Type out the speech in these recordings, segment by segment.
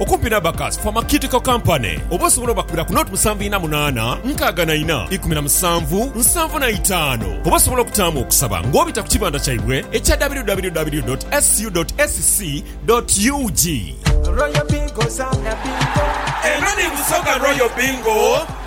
Okumpi n'Abacus Pharmaceutical Company oba osobola obakubira ku 07 ina munaana nkaaga na ina ikumi na musanvu nsanvu na itaanu oba osobola okutaamu okusaba ng'obita ku kibanda kyaibwe ekya www dot ssu dot sc dot ug. Royal Bingo, Zana Bingo. Eno ni Busoga Royal Bingo.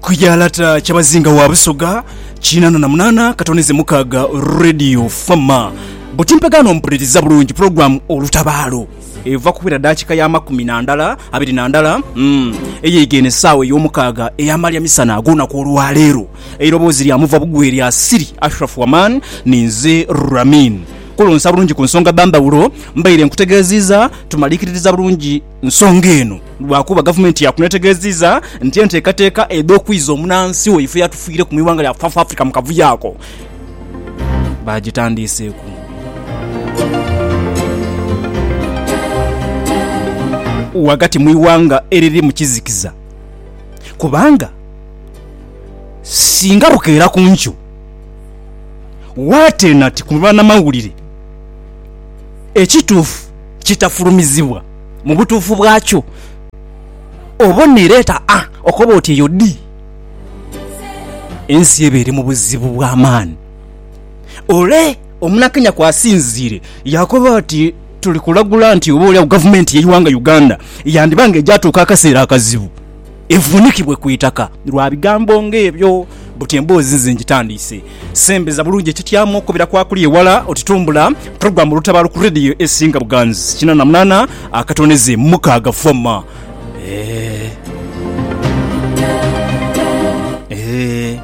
Ku ya lata Kyabazinga wa Busoga kinana na munana katonize mukaga Radio Fama butimpegano mpuliriza bulungi pulogulamu Olutabaalo eva kuwera dakika ya makumi na ndala abiri na ndala mm, eyeige eno esaawa ey'omukaaga eyamalya misana ag'olunaku olwaleero eiroboozi lya muva bugwe lya Siri Ashraf Waman ninze Ramin Kulonsa bulungi ku nsonga bambaulo, mbaire nkutegeeziiza tumaliikiririza bulungi nsonga eno lwakuba gavumenti yaakuno etegeeziiza nti enteekateeka edh'okwiiza omunansi waife eyatufiireku mu ighanga lya South Africa mu kavuyo ako baagitandiiseeku. ghagati mu ighanga eriri mu kizikiza kubanga singa bukeera ku nkyo, Waatena ti ku banamawulire. Ekituufu kitafulumizibwa mu butuufu bwakyo. Obona ereeta A okoba oti eyo D. Ensi eba eri mu buzibu bwa maani. Ole Omunakenya kw'asinziire yaakoba ati, Tuli kulagula nti oboolyawo gavumenti y'eighanga Uganda yandiba nga egyatuuka akaseera akazibu. evuunikibwe ku itaka. Lwa bigambo ng'ebyo buti emboozi nze ngitandiise. Sembeza bulungi ekityamo okukubira kwa kuli ewala oti tumbula pulogulaamu Olutabaalo ku leediyo esinga buganzi, kinana munana akatoneze mukaaga forma. Eeh. Eeh.